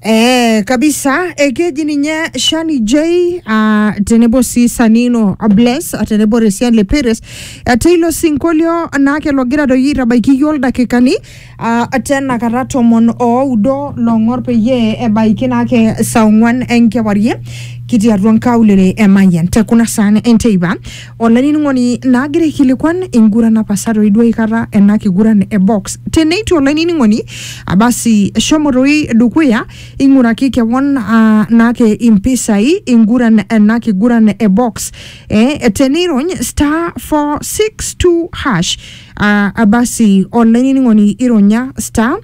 Eh, kabisa ekeji ninye shani j uh, tenebo si sanino bless uh, tenebo resian le peres uh, teilo sinkolio naake logira doi aitabaiki iyio ildakikani uh, tena kata tomon oudo long'or peyie ebaiki naake saa ong'uan enkewarie kitii atua nkaulele emayian te kuna saan enteipa Olainining'oni naagira aikilikuan inguran apa sa toi duo aikata ena kiguran e box. Teneitu olainining'oni ah, basi shomo toi dukuya ing'uraki kewon ah, naake impisai inguran ena kiguran e box. Eh, tenirony star 462 hash ah, basi olainining'oni ironya star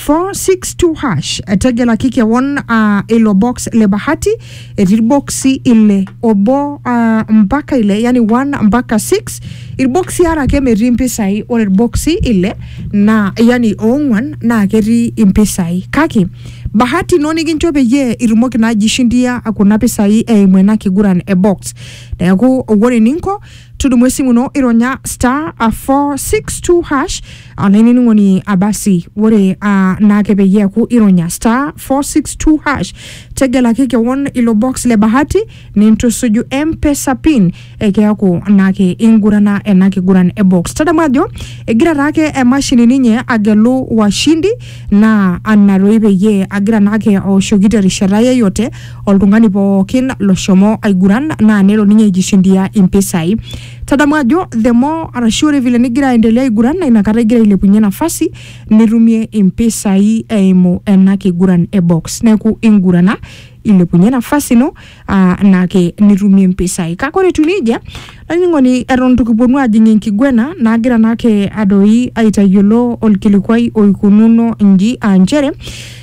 462 hash etegelaki kewon uh, ilo box le bahati etii irboksi ile obo uh, mpaka ile yani 1 mpaka 6 irboksi are ake metii mpisai ore irboksi ile na yani oong'wan naa ketii impisai kake bahati ino nikincho peyie itumoki naa jishindia kuna pisai eimu ena kiguran e box neeku ore eninko tudumu esimu ino ironya star uh, 462 hash olainining'oni abasi ore uh, naake peyie eaku ironya star 462 hash tegelaki kewon ilo box le bahati nintusuju mpesa pin ekeaku naake ingurana ena kiguran e box tadamu ajo egira taake emashini ninye agelu washindi naa anaroi peyie agira naake aoshoki terishata yeyote oltung'ani pookin loshomo aiguran naa nelo ninye aijishindia impisai Tadamu ajo the more arashu ore vile nigira aendelea aiguran na inakata igira ailepunye nafasi nitumie impisai eimu ena kiguran e box. Neeku ingurana ilepunye nafasi ino aa naake nitumie impisai. Kake ore etiu neijia, olainining'oni eton itu kiponu aajing enkiguena naagira naake adoi aitayiolo olkilikuai oikununo inji aa nchere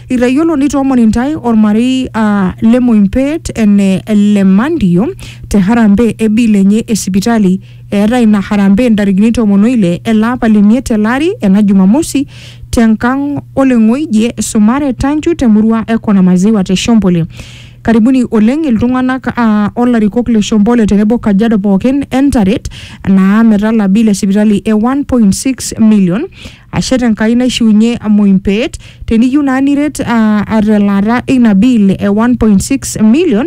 Itayiolo nitoomon intae ormarei uh, le Moimpeet ene le Mandio te harambee e bill enye e sipitali. Eeta ina harambee ntarikini tomon oile ele apa le miet tele ari ena Jumamosi te nkang oleng'oijie Sumare Tanchu te murua e Kona Maziwa te Shombole. Karibuni oleng iltung'anak uh, olarikok le Shombole tenebo Kajiado pookin entaret naa metala bill e sipitali e 1.6 million Ashe te Nkai naishiunye Moimpeet, teniyieu naa niret aa atelaata eina bill e 1.6 million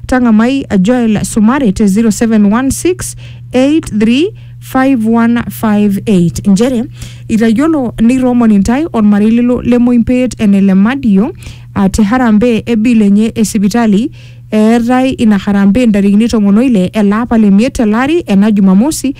tang'amai Joel Sumare te 0716 835158 nchere itayiolo neitoomon intae olmarei lilo le Moimpeet ene Lemadio aa te harambee e bill enye e sipitali eetae ina harambee ntarikini tomon oile ele apa le miet tele ari ena Jumamosi te